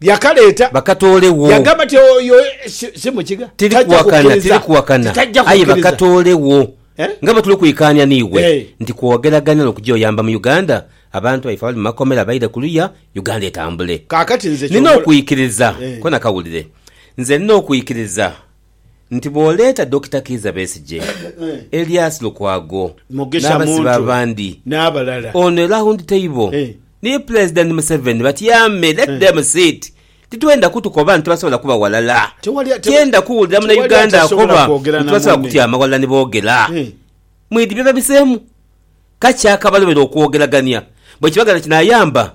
Yakaleeta. Bakatoolegho. Yagamba nti, Oyo si mukiga. Tiri kuwakana, tiri kuwakana. Aye bakatoolegho. Nga bwe tuli kwikaanya n'iwe nti kwogeragania n'okugya oyamba mu Uganda, abantu baife abali mu makomera baire kuluya, Uganda etambule. Kaakati nze ky'obola. Nina okwikiriza. Kona kawulire. Nze nina okwikiriza nti bw'oleeta Dokita Kiiza Besigye, Elias Lukwago n'abasibe abandi, ono e Round Table ni Pulezidenti Museveni batyame, let them sit. Titwenda kutukoba nti tibasobola kuba ghalala. Tyenda kuwulira Munauganda akoba nti tibasobola kutyama ghalala ni boogera. Mwidhi bye babiseemu? Kaki akabalobera okwogeragania bwe kiba nga kinaayamba?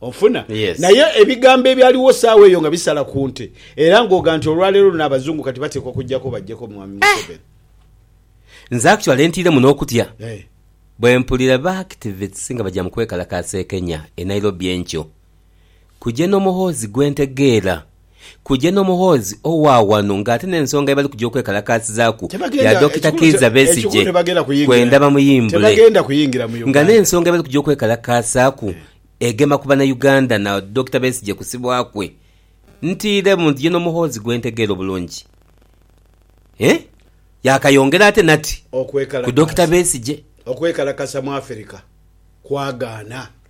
Onfuna? Yes. Naye ebigambo ebyaligho saagha eyo nga bisala ku nte era ng'ogha nti olwaleero luno Abazungu kati bateekwa kujjako bajjeko Mwami Museveni. Nze actually ntiiremu n'okutya Eh. bwe mpulira ba activists nga baja mu kwekalakaasa e Kenya, e Nairobi enkyo. Kujeno Muhoozi gwe ntegeera. Kuja n'omuhoozi owa ghano ng'ate n'ensonga ye bali kuja okwekalakaasizaaku ya Dokita Kiiza Besigye kwenda bamuyimbule nga n'ensonga ye bali kuja okwekalakaasaaku egema ku Banauganda na Dokita Besigye kusibwa kwe. Ntiiremu nti ye n'omuhoozi gwe ntegeera obulungi eeh? Yaakayongera ate nati ku Dokita Besigye. Okwekalakasa mu Afirika kwagaana.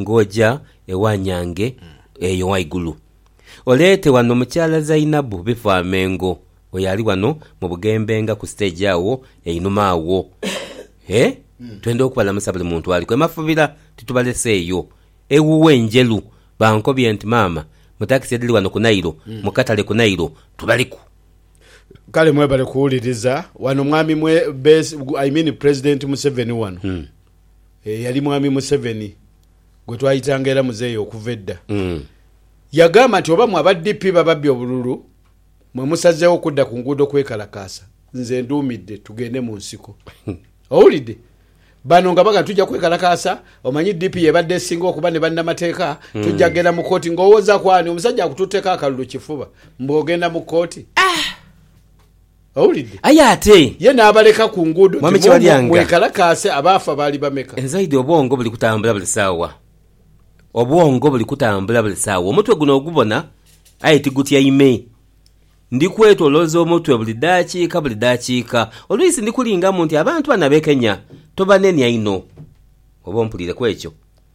Ng'oja ewa nyange eyo ghaigulu, oleete wano mukyala Zainabu Bifwamengo oyo ali wano mu bughembe nga ku siteegi agho einhuma agho. E, twenda okubalamusa buli muntu aliku e Mafubira, titubaleseeyo. Ewuwe Njeru bankobye nti maama mu takisi edhiri wano ku Nairo, mu katale ku Nairo, tubaliku. Kale mwebale kuwuliriza wano mwami mwe, Bes, I mean President Museveni wano. eyali Mwami Museveni gwe twayitanga era Muzeeyi okuva edda, yagamba nti oba mwe aba DP bababbye obululu mwe musazeewo kudda ku nguudo kwekalakaasa, nze nduumidde tugende mu nsiko. Owulidde? Bano nga bagamba tujja kwekalakaasa, omanyi DP y'ebadde esinga okuba ne bannamateeka, tujja kugenda mu kkooti. Ng'owooza ku ani? Omusajja akututteko akalulu kifuba mbu ogenda mu kkooti? Owulidde? Aye ate. Ye n'abaleka ku nguudo nti, Mwomwo mwekalakaase. Abaafa baali bameka? Nzaidi obwongo buli kutambula buli saawa. Obwongo buli kutambula buli saawa. Omutwe guno ogubona, aye tigutyaime. Ndi kwetolooza omutwe buli daakiika buli daakiika. Olwisi ndi kulingamu nti abantu bano abekenya tobanenia inho. Oba ompuliire ku ekyo?